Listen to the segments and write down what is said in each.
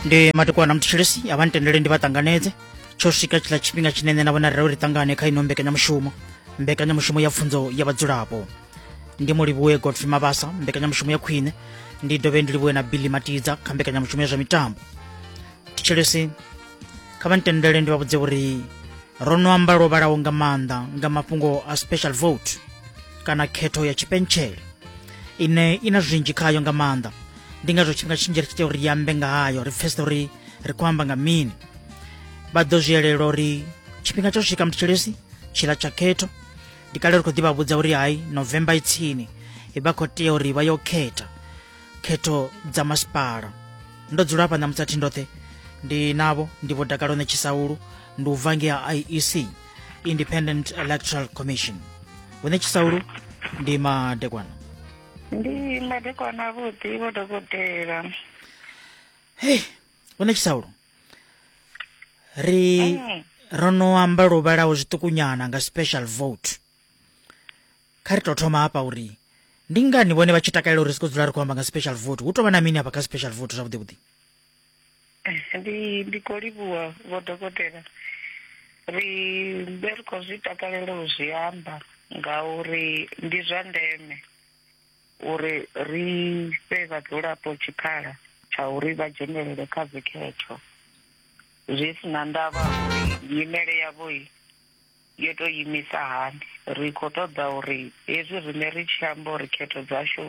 ndi matukwana mthetshelesi avha ntendele ndi vha ṱanganedze tsho swika tshiḽa tshifhinga tshine nṋe na vhona rira uri ṱangane kha ino mbekanyamushumo mbekanyamushumo ya pfunzo ya vhadzulapo ndi mu livhuwe godfrey mabasa mbekanyamushumo ya khwine ndi dovhe ndi livhuwe na billy matidza kha mbekanyamushumo ya zwa mitambo thetshelesi kha vha ntendele ndi vha vhudze uri ro no amba lwo vhalaho nga maanḓa nga mafhungo a special vote kana khetho ya tshipentshele ine i na zwinzhi khayo nga maanḓa ndi ngazwo tshifhinga tshinzhi ri tshi tea uri ri ambe nga hayo ri pfesesa uri ri khou amba nga mini vha ḓo zwi elela uri tshifhinga tsha u swika muthetsheleshi tshila tsha khetho ndi kale ri khou ḓivha vhudza uri hai november i tsini vha khou tea uri vha yo khetha khetho dza masipala ndo dzula hafha ṋamusi athi ndoṱhe ndi navho ndi vho dakalo netshisaulu ndi u bva ngea iec independent electoral commission vho netshisaulu ndi madekwana ndi madekwana avhuḓi vho dokotela hei vho netshisaulu ri mm. ro no amba lwo vhalaho zwiṱukunyana nga special vote kha ri tou thoma hafha uri ndi ngani vhone vha tshi takalela uri ri si khou dzula ri khou amba nga special vote hu tou vha na mini hafha kha special vote zwavhuḓi vhuḓi ndi ndi khou livhuwa vho dokotela ri be ri khou zwi takalela u zwi amba ngauri ndi zwa ndeme uri ri fhe vhadzulapo tshikhala tsha uri vha dzhenelele kha dzikhetho zwi si na ndavha uri nyimele yavho Yo tou imisa hani? Ri khou ṱoḓa uri hezwi riṋe ri tshi amba uri khetho dzashu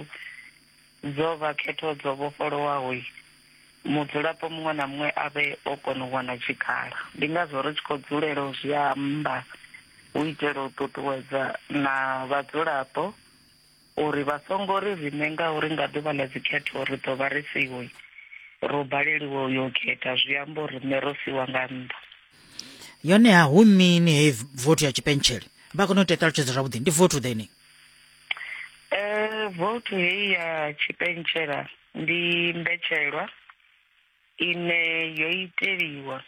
dzo vha khetho dzo vhofholowaho, mudzulapo muṅwe na muṅwe a vhe o kona u wana tshikhala. Ndi ngazwo ri tshi khou dzulela u zwi amba u itela u ṱuṱuwedza na vhadzulapo. uri vha songo ri riṋe ngauri nga ḓuvha ḽa dzikhetho ri ḓo vha ri siho, ro baleliwa u yo khetha, zwi amba uri riṋe ro siwa nga nnḓa. Yoneha hu mini hei vothi ya tshipentshele? Vha kone u tea ṱalutshedza zwavhuḓi. Ndi vothi ḓe ni? Eh, vothi hei ya tshipentshela ndi mbetshelwa ine yo iteliwa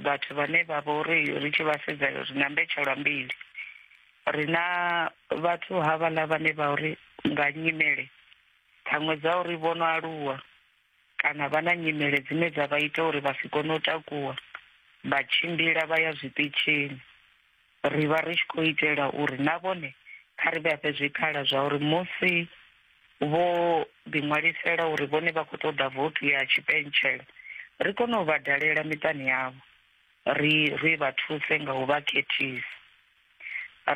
vhathu vhane vha vha uri ri tshi vha sedza ri na mbetshelwa mbili ri na vhathu havhaḽa vhane vha uri nga nyimele ṱhaṅwe dza uri vho no aluwa kana vha na nyimele dzine dza vha ita uri vha si kone u takuwa vha tshimbila vha ya zwiṱitshini ri vha ri tshi khou itela uri na vhone kha ri vhafhe zwikhala zwa uri musi vho ḓiṅwalisela uri vhone vha khou ṱoḓa vothi ya tshipentshela ri kone u vha dalela miṱani yavho ri ri vha thuse nga u vha khethisa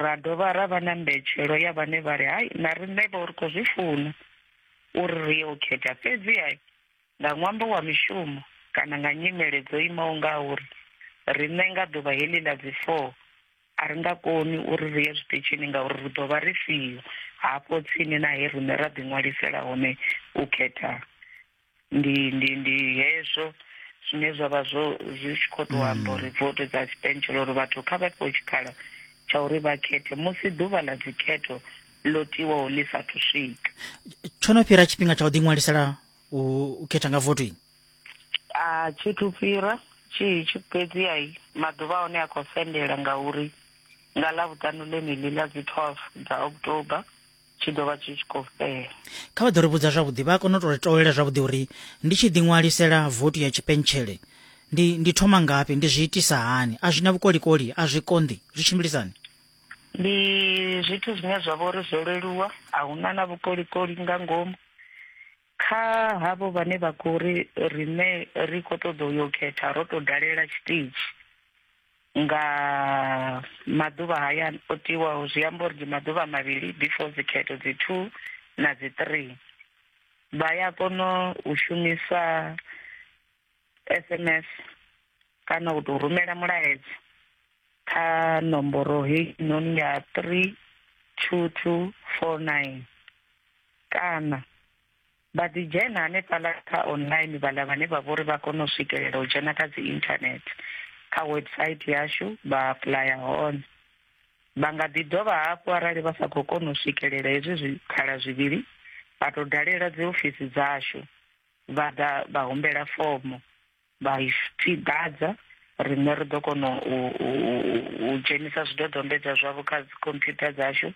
ra dovha ra vha na mbetshelo ya vhane vha ri hai na riṋe vho ri khou zwi funa uri ri yo khetha fhedzi hai Nga ṅwambo wa mishumo kana nga nyimele dzo imaho ngauri, riṋe nga ḓuvha heḽi ḽa dzi 4 a ri nga koni uri ri ye zwiṱitshini ngauri ri ḓo vha ri siho hafho tsini na he riṋe ra ḓiṅwalisela hone u khetha. Ndi, ndi, ndi hezwo zwine zwa vha zwo, zwi tshi khou tou amba uri voto dza tshipentshela uri vhathu kha vha fhiwe tshikhala tsha uri vha khethe musi ḓuvha ḽa dzikhetho ḽo tiwaho ḽi sa thu swika. Tsho no fhira tshifhinga tsha u ḓiṅwalisela u u khetha nga voto ini a thi thu fhira tshi tshi fhedzi ai maḓuvha a hone a khou sendela ngauri nga ḽa vhuṱanu ḽeneḽi ḽa dzi 12 dza october tshi ḓo vha tshi tshi khou fhela kha vha ḓo ri vhudza zwavhuḓi vha a kona u tou ri tolela zwavhuḓi uri ndi tshi ḓiṅwalisela votu ya tshipentshele ndi ndi thoma ngafhi ndi zwi itisa hani a zwi na vhukolikoli a zwi konḓi zwi tshimbilisani ndi zwithu zwine zwa vha uri zwo leluwa a hu na na vhukolikoli nga ngomu kha havho vhane vha khou ri riṋe ri khou ṱoḓa u yo khetha ro tou dalela tshiṱitshi nga maḓuvha haya o tiwaho zwi amba uri ndi maḓuvha mavhili before dzikhetho dzi two na dzi three vha ya kona u shumisa sms kana u tou rumela mulaedza kha nomboro heyi noni ya three two two four nine kana vha ḓi dzhena hanefhaḽa kha online vhaḽa vhane vha vhori vha kone u swikelela u dzhena kha dzi internet kha website yashu vha apuḽaya hone vha nga ḓi dovha hafhu arali vha sa khou kona u swikelela hezwi zwikhala zwivhili vha tou dalela dzi ofisi dzashu vha ḓa vha humbela fomo vha i ḓadza riṋe ri ḓo kona u dzhenisa zwidodombedzwa zwavho kha dzi computer dzashu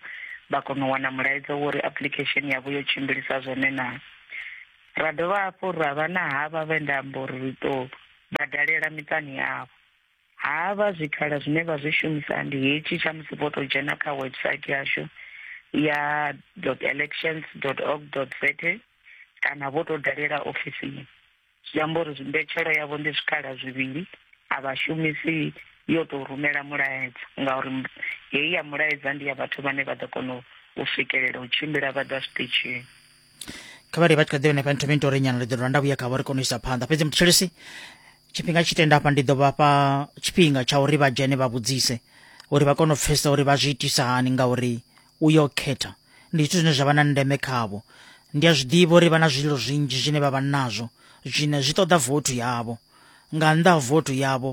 vha kona u wana mulaedza wo uri application yavho yo tshimbilisa zwone naa ra dovha hafhu ra vha na havha vhe nda amba uri ri tou vha dalela miṱani yavho ha vha zwikhala zwine vha zwi shumisa ndi hetshi tsha musi vho tou dzhena kha website yashu ya elections org za kana vho tou dalela ofisini zwi amba uri mbetshelo yavho ndi zwikhala zwivhili a vha shumisi yo tou rumela mulaedza ngauri heyi ya mulaedza ndi ya vhathu vhane vha ḓo kona u swikelela u tshimbila vha ḓa zwiṱitshini kha vha ri vha tshi kha ḓivha henefha nthomeni to ri nyana ri ḓo dovha nda vhuya kha vho ri kone u isa phanḓa fhedzi muthetshelesi tshifhinga tshi tenda hafha ndi ḓo vhafha tshifhinga tsha uri vha dzhene vha vhudzise uri vha kone u pfhesesa uri vha zwi itisa hani ngauri u yo khetha ndi zwithu zwine zwa vha na ndeme khavho ndi a zwi ḓivha uri vha na zwililo zwinzhi zwine vha vha nazwo zwine zwi ṱoḓa vothu yavho nga nnḓa ha vothu yavho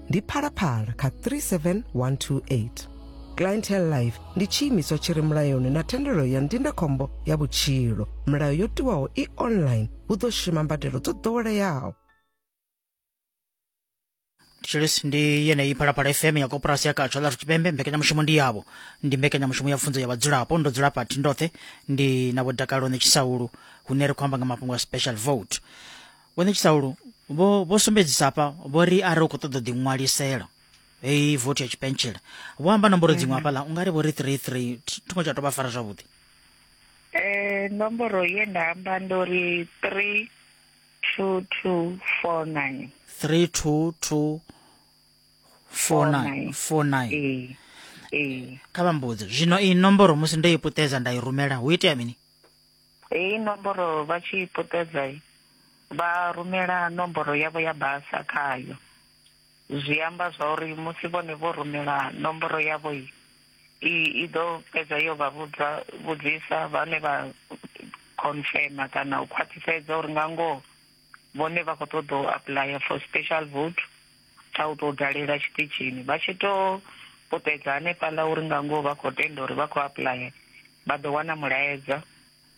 ndi phalaphala kha 37128 clientele life ndi tshiimiswa tshi re mulayoni na thendelo ya ndindakhombo ya vhutshilo milayo yo tiwaho i online hu ḓo shuma mbadelo dzo ḓoweleaho tshilisi ndi yeneyi phalaphala fm ya koporasi ya katsho ḽa tshipembe mbekanyamushumo ndi yavho ndi mbekanyamushumo ya pfunzo ya vhadzulapo ndo dzula pathi ndoṱhe ndi na vhodakalo ne tshisaulu hune ri khou amba nga mafhungo a special vote Vho Netshisaulu vho vho sumbedzisa hafha vho ri arali u khou ṱoḓa u ḓiṅwalisela heyi vothi ya tshipentshela vho amba nomboro dziṅwe mm. hafhaḽa u nga ri vho ri three three thungo tsha tou vha fara zwavhuḓi eh nomboro ye nda amba ndo ri three two two four nine three two two four nine four nine ee ee kha vha mbudze zwino iyi nomboro musi ndo i puṱedza nda i rumela hu itea mini Heyi nomboro vha tshi i puṱedza vha rumela nomboro yavho ya basa khayo. Zwi amba zwa uri musi vhone vho rumela nomboro yavho i i ḓo fhedza yo vha vhudza vhudzisa vhane vha confirmer kana u khwaṱhisedza uri nga ngoho vhone vha khou ṱoḓa u apuḽaya for special vote tsha u tou dalela tshiṱitshini vha tshi tou puṱedza hanefhaḽa uri nga ngoho vha khou tenda uri vha khou apuḽaya vha ḓo wana mulaedza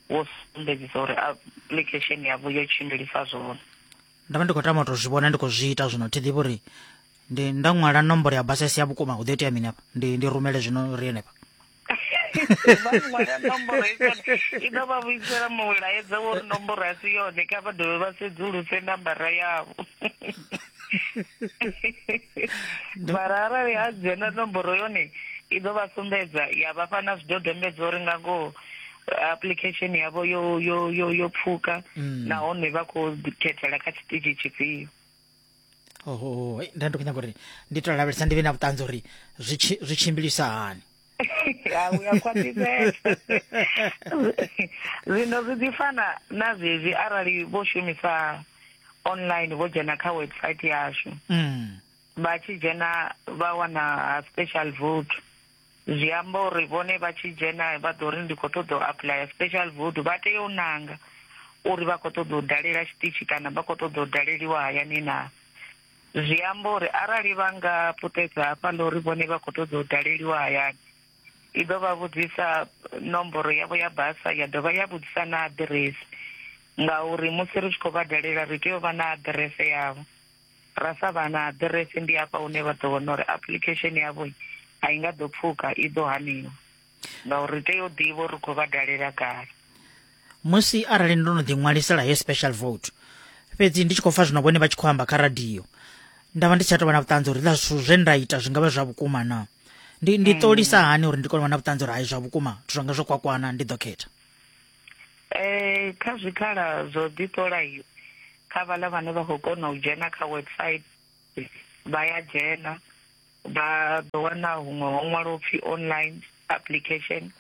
wo sumbedzisa uri application yavho yo tshimbilisa zwone ndavha ndi khou tama to zwi vhona ndi khou zwi ita zwino thi ḓivhi uri ndi nda ṅwala nomboro ya basesi ya vhukuma hu ḓo itea mini hafha ndi ndi rumele zwino ri henefha i ḓo vha vhuisela mulaedza wo ri nomboro a si yone kha vha dovhe vha sedzuluse nambara yavho mara arali a dzhena nomboro yone i ḓo vha sumbedza ya vhafha na zwidodombedzwa uri nga ngoho application yavho yo yo yo yo pfuka mm. nahone vha khou khethela kha tshiṱitshi tshifhio oho nda ndi khou nyanga uri ndi to lavhelesa ndi vhe na vhuṱanzi uri zwi tshimbilisa hani ya u ya khwaṱhisedza zwino zwi ḓi fana na zwezwi arali vho shumisa online vho dzhena kha website yashu mm. vha tshi dzhena vha wana special vote zwi amba uri vhone vha tshi dzhena vha ḓo ri ndi khou ṱoḓa u aplaya special vote vha tea u nanga uri vha khou ṱoḓa u dalela tshiṱitshi kana vha khou ṱoḓa u daleliwa hayani naa Zwi amba uri arali vha nga puṱedza hafha ḽa uri vhone vha khou ṱoḓa u daleliwa hayani, i ḓo vha vhudzisa nomboro yavho ya basa ya dovha ya vhudzisa na aḓiresi ngauri musi ri tshi khou vha dalela ri tea u vha na aḓirese yavho. Ra sa vha na aḓirese ndi hafha hune vha ḓo wana uri application yavho a i nga ḓo pfuka, i ḓo haniwa. ngauri ri tea u ḓivha uri ri khou vha dalela kale musi arali ndo no ḓiṅwalisela he special vote fhedzi ndi tshi khou pfa zwino vhone vha tshi khou amba kha radio nda vha ndi tsha tou vha na vhuṱanzi uri ḽa zwithu zwe nda ita zwi nga vha zwa vhukuma na ndi ndi mm. ṱolisa hani uri ndi kone u vha na vhuṱanzi uri hai zwa vhukuma zwithu zwanga zwo kwakwana ndi ḓo khetha um kha zwikhala zwo ḓiṱola iyo kha vhaḽa vhane vha khou kona u dzhena kha website vha ya dzhena vha ḓo wana huṅwe ho ṅwalwa upfi online application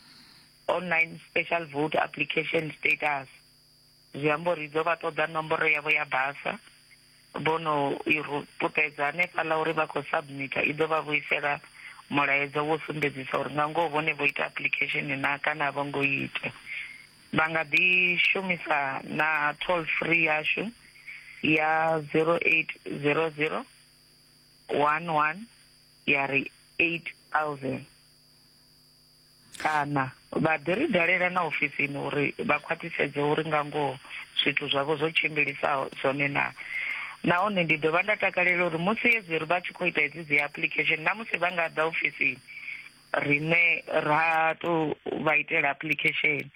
online special vote application status zwi amba uri dzo vha ṱoḓa nomboro yavho ya basa vhono i puṱedza hanefhaḽa uri vha khou submita i ḓo vha vhuisela mulaedza wo sumbedzisa uri nga ngoho vhone vho ita application na kana a vho ngo ita vha nga ḓi shumisa na toll free yashu ya 0800 one one ya ri 8000 kana vha ḓi ri dalela na ofisini uri vha khwaṱhisedze uri nga ngoho zwithu zwavho zwo tshimbilisaho zwone na nahone ndi dovha nda takalela uri musi hedzi ri vha tshi khou ita hedzi dzi application na musi vha nga ḓa ofisini rine ra to vha itela application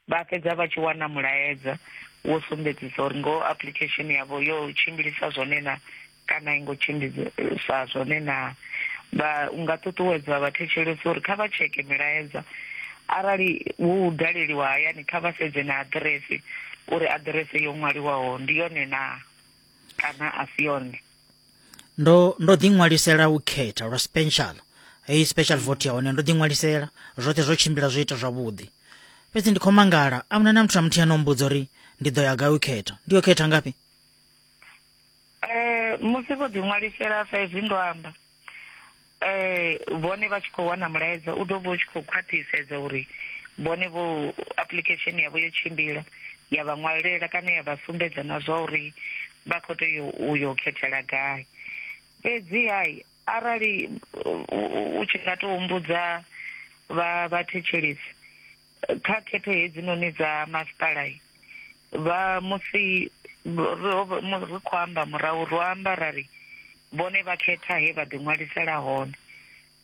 vha fhedza vha tshi wana mulaedza wo sumbedzisa uri ngoho application yavho yo tshimbilisa zwone na kana i ngo tshimbidzisa zwone naa. Vha, u nga ṱuṱuwedza vhathetshelesi uri kha vha tsheke milaedza. Arali hu u daleliwa hayani, kha vha sedze na aḓirese uri aḓirese yo ṅwaliwaho ndi yone naa kana a si yone. Ndo, ndo ḓiṅwalisela u khetha lwa special, heyi special vote ya hone ndo ḓiṅwalisela, zwoṱhe zwo tshimbila zwo ita zwavhuḓi. Fhedzi ndi khou mangala, a huna na muthu na muthihi ano mmbudza uri ndi ḓo ya gai u khetha. Ndi yo khetha ngafhi? Eh musi vho ḓi ṅwalisela sa izwi ndo amba eh vhone vha tshi khou wana mulaedza u ḓo vha u tshi khou khwaṱhisedza uri vhone vho application yavho yo tshimbila ya vha ṅwalela kana ya vha sumbedza na zwa uri vha khou tea u yo khethela gai fhedzi hai arali u tshi nga tou humbudza vha vhathetshelesi Kha khetho hedzinoni dza masipala vha musi ri khou amba murahu ro amba ra ri vhone vha khetha he vha ḓiṅwalisela hone,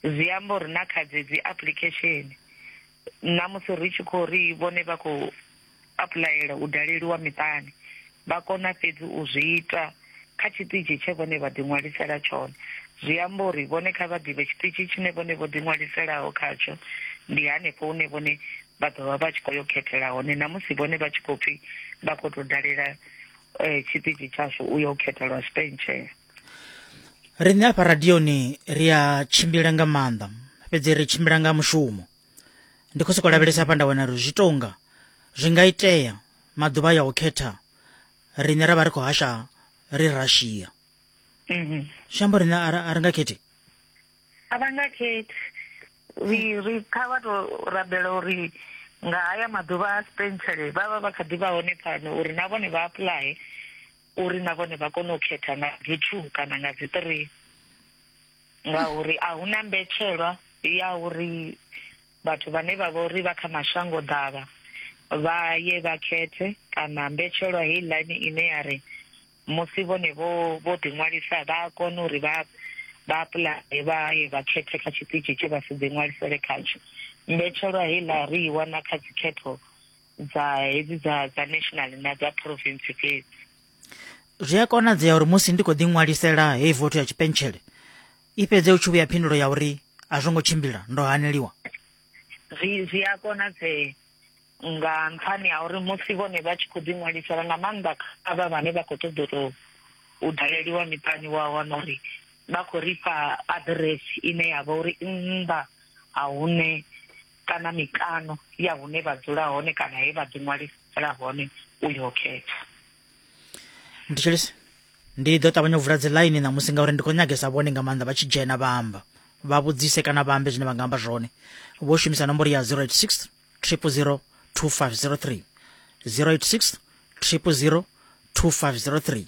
zwi amba uri na kha dzedzi application na musi ri tshi khou ri vhone vha khou apuḽayela u daleliwa miṱani vha kona fhedzi u zwi ita. kha tshiṱitshi tshe vhone vha ḓiṅwalisela tshone. Zwi amba uri vhone kha vha ḓivhe tshiṱitshi tshine vhone vho ḓiṅwaliselaho khatsho ndi hanefho hune vhone vha ḓo vha vha tshi khou yo khethela hone na musi vhone vha tshi khou pfi vha khou tou dalela um tshiṱitshi tshashu u ya u khethelwa sipentshela riṋe afha radioni ri a tshimbila nga maanḓa fhedzi ri tshimbila nga mushumo ndi khou sokou lavhelesa hafha nda wana ri zwi tonga zwi nga itea maḓuvha ya u khetha riṋe ra vha ri khou hasha ri russia mhm. zwi amba riṋe a ri nga khethi a vha nga khethi ri ri kha vha to rabela uri nga haya maḓuvha a spentsele vha vha vha kha ḓi vha hone pfano uri na vhone vha apuḽaye uri na vhone vha kone u khetha nga dzi two kana nga dzi three ngauri a hu na mbetshelwa ya uri Vhathu vhane vha vha uri vha kha mashangoḓavha vha ye vha khethe kana mbetshelwa heiḽani ine ya ri musi vhone vho vho ḓiṅwalisa vha a kona uri vha vha apuḽaye vha ye vha khethe kha tshiṱitshi tshe vha si ḓiṅwalisele khatsho. Mbetshelwa heiḽa ri i wana kha dzikhetho dza hedzi dza dza national na dza province fhedzi. Zwi a konadzea uri musi ndi khou ḓiṅwalisela heyi vothu ya tshipentshele i fhedze u tshi vhuya phindulo ya uri a zwo ngo tshimbila ndo haneliwa zwi zwi a konadzea nga nṱhani ha uri musi vhone vha tshi khou ḓiṅwalisela nga maanḓa kha vha vhane vha khou ṱoḓa tou u daleliwa miṱani wa wana uri vha khou ri fha aḓiresi ine ya vha uri nnḓa ha hune kana mikano ya hune vha dzula hone kana he vha ḓiṅwalisela hone u yo khetha ndi tshi lisa ndi ḓo ṱavhanya u vula dzi line ṋamusi ngauri ndi khou nyagesa vhone nga maanḓa vha tshi dzhena vha amba vha vhudzise kana vha ambe zwine vha nga amba zwone vho shumisa nomboro ya 086 000 2503 086 000 2503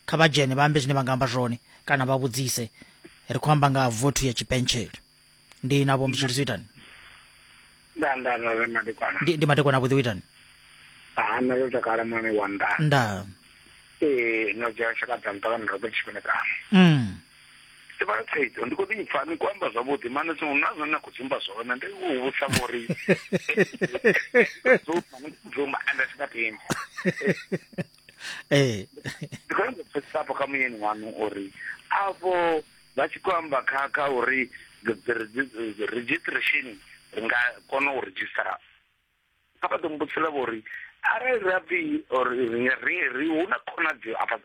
kha vha dzhene vha ambe zwine vha nga amba zwone kana vha vhudzise ri khou amba nga ha vothu ya tshipentshele ndi na vho mzhiri zwitani nda nda nda re madekwana ndi, ndi madekwana vhuḓi witani ha nṋe ndo takala mwana wa nda nda ee no dzhia tshaka dza mutakalo ndo ḓo tshifhinga kana mm. sibala thaidzo ndi khou ḓi pfa ni khou amba zwavhuḓi mane tshiṅwe na zwone na khou dzumba zwone ndi u vhutsa vhori dzumba ni khou dzumba ende sika timba ee ndi khou nyanga u pfesesa afho kha muyeni waṋu uri afho Vha tshi khou amba kha kha uri registration ri nga kona u redzhisitara, kha vha ḓo mbudzisela vho uri arali ra pfi or ri ri hu na khonadzeo afha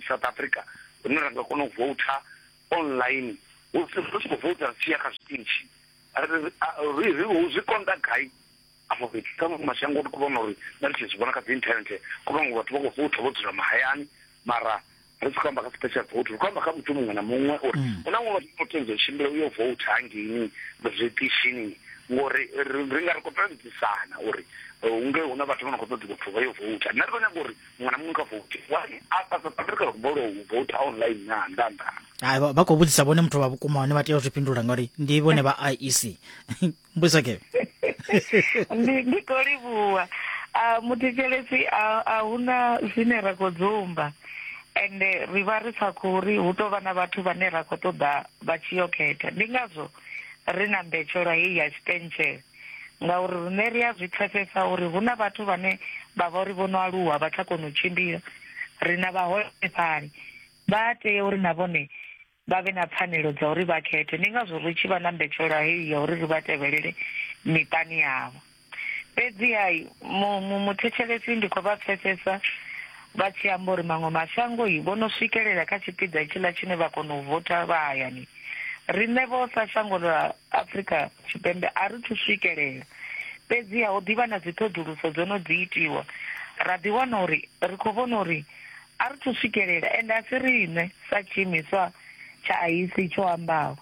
South Africa hune ra nga kona u voutha online hu ri tshi khou voutha ri tshi ya kha zwiṱitshi ri ri ri zwi konḓa gai. afho fhethu kha maṅwe mashango ri khou vhona uri na ri tshi zwi vhona kha dzi internet kho vhaṅwe vhathu vha khou voutha vho dzula mahayani mara ri si khou amba kha special vote ri khou amba kha muthu muṅwe na muṅwe uri mm. hu na muṅwe vhathu vho tendza u tshimbila u yo voutha hangeini zwiṱishini ngori ri nga ri khou ṱalutshedzisana uri eh, unge hu na vhathu vho no khou ṱoḓa vhathu vha yo voutha nṋe ri khou nyaga uri muṅwe na muṅwe kha vouthe wai a south africa ri khou bolo u voutha online na nnḓa nnḓa hai vha khou vhudzisa vhone muthu vha vhukuma hone vha tea u zwi fhindula ngauri ndi vhone vha iec mbuisa ke ndi ndi khou livhuwa a muthetshelesi a a huna zwine ra khou dzumba ende ri vha ri sa khou ri hu tou vha na vhathu vhane ra khou ṱoḓa vha tshi yo khetha ndi ngazwo ri na mbetshelwa heyi ya tshipentshele ngauri rine ri a zwi pfesesa uri hu na vhathu vhane vha vha uri vho no aluwa vha tsha kona u tshimbila ri na vhaholefhali vha tea uri na vhone vha vhe na pfanelo dza uri vha khethe. Ndi ngazwo ri tshi vha na mbetshelwa heyi ya uri ri vha tevhelele miṱani yavho. Fhedziha muthetshelesi ndi khou vha pfesesa vha tshi amba uri maṅwe mashango vho no swikelela kha tshipiḓa itshiḽa tshine vha kona u votha vha hayani riṋe vho sa shango ḽa afrika tshipembe a ri thu swikelela fhedziha hu ḓivha na dziṱhoḓuluso dzo no dzi itiwa ra ḓiwana uri ri khou vhona uri A ri thu swikelela, ende a si riṋe, sa tshiimiswa tsha IEC tsho ambaho,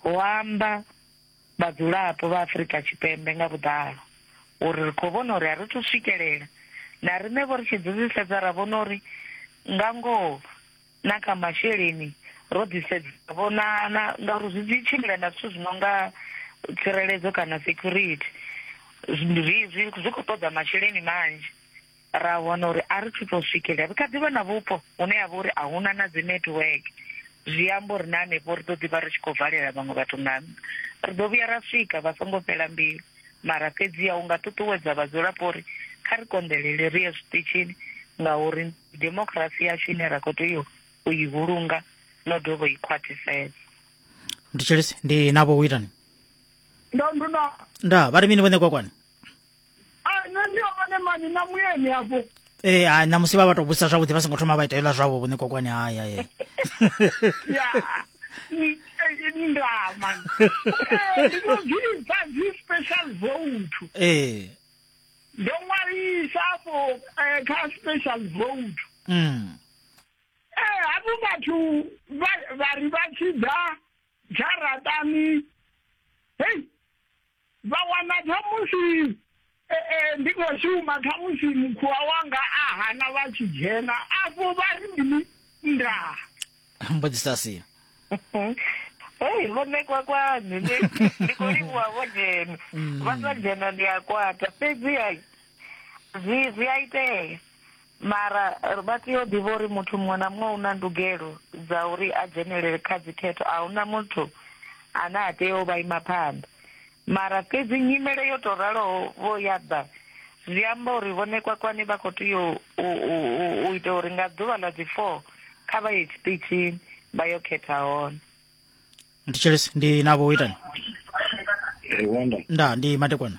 hu amba vhadzulapo vha Afrika Tshipembe nga vhuḓalo, uri ri khou vhona uri a ri thu swikelela. Na riṋe-vho ri tshi dzivhisedza ra vhona uri nga ngoho na kha masheleni ro ḓisedza ra vhona na ngauri zwi dzi tshimbila na zwithu zwi no nga tsireledzo kana security, zwi zwi zwi khou ṱoḓa masheleni manzhi. ra wana uri a ri thu tou swikelela ri kha ḓi vha na vhupo hune ya vha uri a huna na dzi network zwi amba uri na hanefho ri ḓo ḓi vha ri tshi khou valela vhaṅwe vhathu nga nnḓa ri ḓo vhuya ra swika vha songo fhela mbilu mara fhedzi ya u nga ṱuṱuwedza vhadzulapo uri kha ri konḓelele ri ye zwiṱitshini ngauri demokirasi yashu ine ra khou tea u i vhulunga no dovha i khwaṱhisela ndi tshelisi ndi navho u itani ndo ndu na nda vha ri mini vhone kwakwani nṋe ndi yo vhone mani na muyeni afho ee eh, namusi vha vha tou vhudzisa zwavhuḓi vha songo thoma vha ita hela zwavho vhone kokwani haya ye ndama ndinozviita zvispecial vote ee ndo ṅwalisa afho eh, kha special vote mm. ee eh, havho vhathu vha ri vha tshi ḓa dzharaṱani hei vha wana khamusi e, e, ndi khou shuma khamusi mukhuwa wanga a hana vha tshi dzhena afho vha ri mini ndaa mbudzisa si hei vho ṋekwa kwanu ndi ndi khou livhuwa vho dzhena vha sa dzhena ndi a kwata fhedzi ai zwi zwi a itea Mara ri vha tea u ḓivha uri muthu muṅwe na muṅwe u na ndugelo dza uri a dzhenelele kha dzikhetho, a hu na muthu ane a tea u vha ima phanḓa. Mara fhedzi nyimele yo tou raloho vho ya ḓa, zwi amba uri Vho Nekwakwani vha khou tea u ita uri nga ḓuvha ḽa dzi 4 kha vha ye tshiṱitshini vha yo khetha hone. Thetshelesi ndi na vho itani. Nda ndi Matekwana.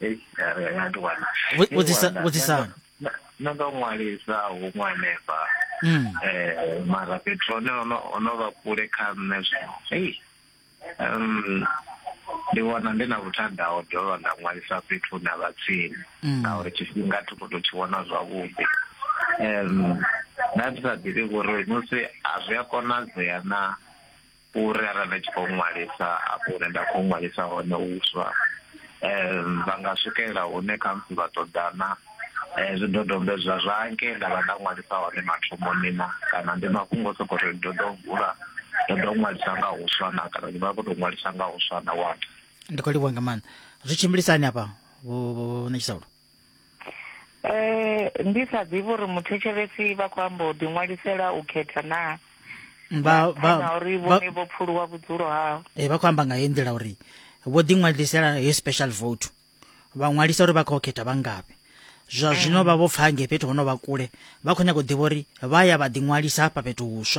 Ei, ya- ya- ya ndi wana. Vhu- Ndi vhudzisa- wana. vhudzisani. Na- na ndo ṅwalisa huṅwe hanefha Mm. eh mara fhethu hone ono ono vha kule kha nṋe zwino ei um ndi wana ndi na vhuthada ho dovha nda ṅwalisa fhethu hune ha vha tsini Mm. ngauri tshifhinga thi khou tou tshi vhona zwavhuḓi um nda ndi sa ḓivhi uri musi a zwi a konadzea na uri arali vha tshi khou ṅwalisa afho hune nda khou ṅwalisa hone uswa um vha nga swikelela hune khamusi vha ṱoḓana um zwidodombedzwa zwa nke nda vha nda ṅwalisa hone mathomoni na kana ndi mafhungo o sokou ri ndo ḓo vula ndo ḓo ṅwalisa nga uswa na kana ndi vha khou tou ṅwalisa nga uswa na wata ndi khou livhuwa nga maanḓa zwi tshimbilisani hafha vho vho ṋetshisa Eh ndi sa ḓivhi uri muthetshelesi vha khou amba u ḓiṅwalisela u khetha na vha vha uri vhone vho pfuluwa vhudzulo hao eh vha khou amba nga heyi nḓila uri vho ḓiṅwalisela heyi special vote vha ṅwalisa uri vha khou khetha vha ngavhe zwa zwino vha vho pfa nge fhethu hono vha kule vha khou nyanga u ḓivha uri vha ya vha ḓiṅwalisa hafha fhethu huswa